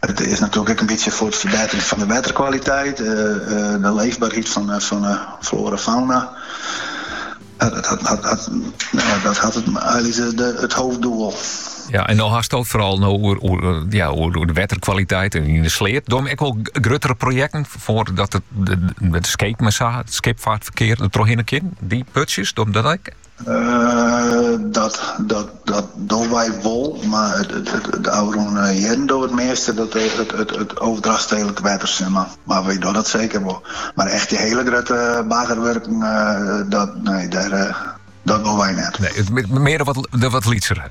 It is natuerlik ek in bytsje foar it ferbetteren fan de wetterkwaliteit, de leefbaarheid fan de floara en fauna. Dat hat einliks it hoofddoel. Ja, en no hast it foaral no oer, oer, eh, ja, oer, oer de wetterkwaliteit en yn de sleat. Dogge jim ek wol gruttere projekten foar dat it, de, de, de skip, mar it skipfeartferkear der trochhinne kin? Dy putsjes, dogge jim dat ek? Dat dogge wy wol, mar de ôfrûne jierren doe it measte it Overdracht stedelijk wetter, sis mar. Mar wy dogge dat seker wol. Mar echt dy hiele grutte baggerwurken, dat, nee, dat wol wy net. Nee, mear de wat lytsere.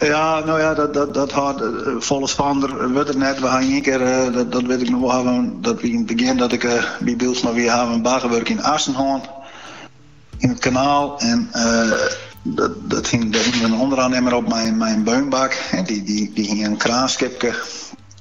Ja, no ja, dat, dat, dat hâldt eh, folle spannender wurdt it net. We ha ien kear, eh, dat, dat wit ik noch wol, hawwe, dat wie yn it begjin dat ik eh, by Bylsma wie, hawwe in baggerwurk yn Assen hân. Yn it kanaal. En eh, dat, dat hiene, dêr hiene we in ûnderoannimmer op mei in, mei in beunbak. En dy, dy, dy hie in kraanskipke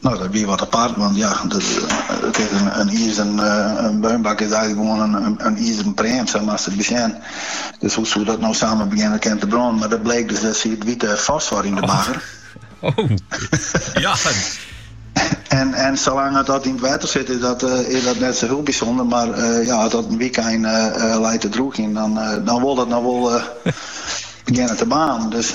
No, dat wie wat apart, want ja, it is in izeren beunbak is eigenlik gewoan in izeren pream, sa moatst it besjen. Dus hoe soe dat no samar begjinne kin te brânen? Mar dat bleek dus dat siet wite fosfor yn de bagger. Oh, oh. ja. En, en salang't dat yn it wetter sit, is dat, eh, is dat net sa hiel bysûnder. Mar eh, ja, at dat in wykein uh, eh, leit te droegjen, dan, dan wol dat no wol begjinne te baarnen. Dus